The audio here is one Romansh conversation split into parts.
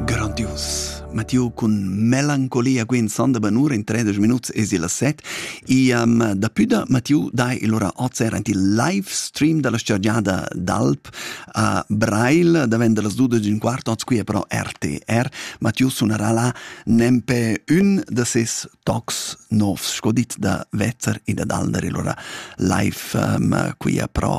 Grandius. Mattiu cun melancolia Gwen Sandebanur in 30 minuts es il 7. Iam da püda Mattiu dai il ora ozer ant il live stream dalla stargiada d'Alp a Brail davent das 12 un quart oz qui però RTR. Mattiu sunarà là nempe ün da ses tocs novs, sco dit da Vezzer e da Dalder il ora live um, qui però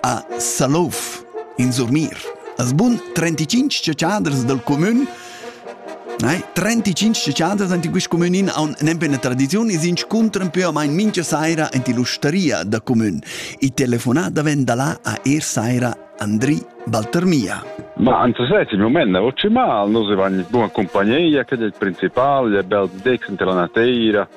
a Salouf in Surmir. As bun 35 ciociaders del comün Nei, 35 ciociaders in quist comün in haun nempe una tradiziun e s'inscuntran più o meno mincha saira in l'usteria da comün. I telefonà daven da là a er saira Andri Baltermia. Ma anzi sai, il moment è ottimale, noi siamo in buona compagnia, che è il principale, è bel dex intra la nateira,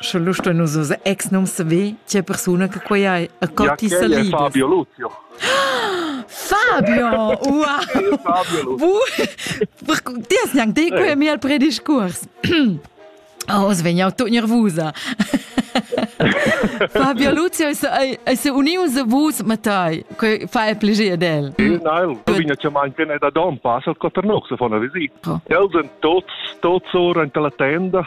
Sche lu stein nus oz ex num saver tgei persuna che quei ei e co ti sa libers. Fabio Luzio. Fabio, ua! Ti hast gnanc dei quei mi al prediscurs. Oh, oz vegn jau tut nervusa. Fabio Luzio è unius vus matai. Quei fa el plegir del. Nein, tu vegna cha mein ken da don pass al Coternox von a visita. Els en tots tots ora in la tenda